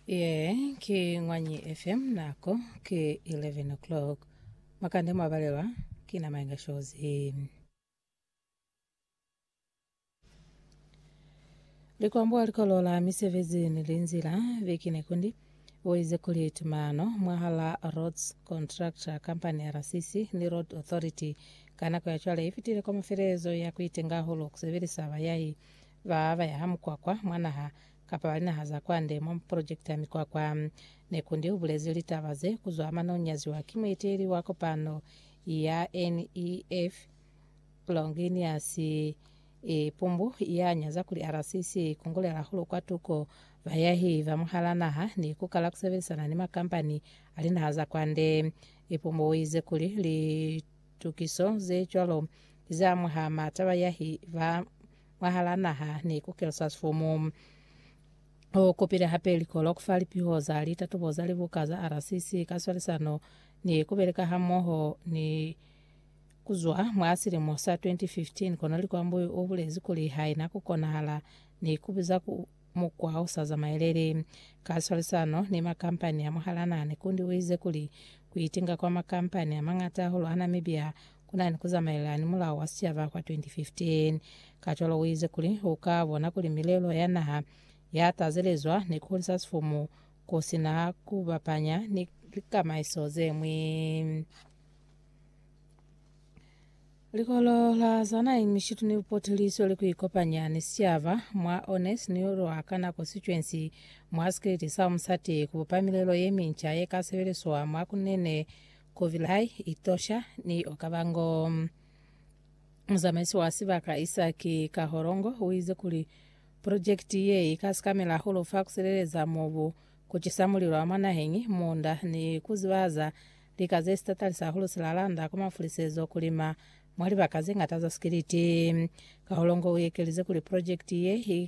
Yee, ki Ngwanyi FM nako ki 11 o'clock. Makande mwabalelwa ki na Maenga Shozi. Likwambo likolo la misebezi ni linzila biki ne kundi boize kuli tumano mwahala Roads Contractor Company RCC ni Road Authority ka nako ya cwale ifitile kwa mafelezo ya kuitenga hulu kusebelisa bayahi ba ba yaha mukwakwa mwa naha kapa ba linaha za kwande mwa mapolojekiti a mikwakwa. Nekundi u bulezi litaba ze ku zwa mane u nyaziwa ki mueteeli wa kopano ya NEF, Longinius Ipumbu, ya nyaza kuli RCC i kungulela hahulu kwa tuko ba yahi ba mwahal'a naha ni ku kala ku sebelisana ni makampani a linaha za kwande. Ipumbu u ize kuli litukiso ze cwalo ki z'a mwaha m'ata ba yahi ba mwahalaa naha ni ku Kilsasvumu. U kupile hape likolo ku fa lipiho za litatubo za libuka za RCC ka swalisano ni ku beleka hamoho ni ku zwa mwa silimo sa 2015, kono Likwambui u bulezi kuli haina ku konahala ni ku biza ku mukwa u sa zamaeleli. Ka swalisano ni makampani a mwahalaa naha ni kundi u ize kuli ku itinga kwa makampani a mañata hahulu a Namibia ku na ni ku zamaela ni Mulao wa Sicaba kwa 2015. Kacwalo uize kuli u ka bona kuli milelo ya naha ya tazelezwa ni ku hulisa sifumu ku si na ku bapanya ni likamaiso ze ñwi. Likolo la Zana Imishitu ni Bupotiliso li ku ikopanya ni sicaba mwa Ones ni lwa ka nako sicwensi mwa sikiliti sa Umusati ku bupa milelo ye minca ye ka sebeliswa mwa ku nene Kovilai, Itosha ni Okavango. Muzamaisi wa sibaka Isaki Kaholongo uize kuli projekiti ye ika sikamela hahulu fa kusileleza mobu, kucisa mulilo wa mwa naheñi, munda, ni kuzibaza lika ze sitatalisa hahulu silalanda kwa mafulisezo kulima mwa libaka zeñata za sikiliti. Kaholongo uekelize kuli projekiti ye i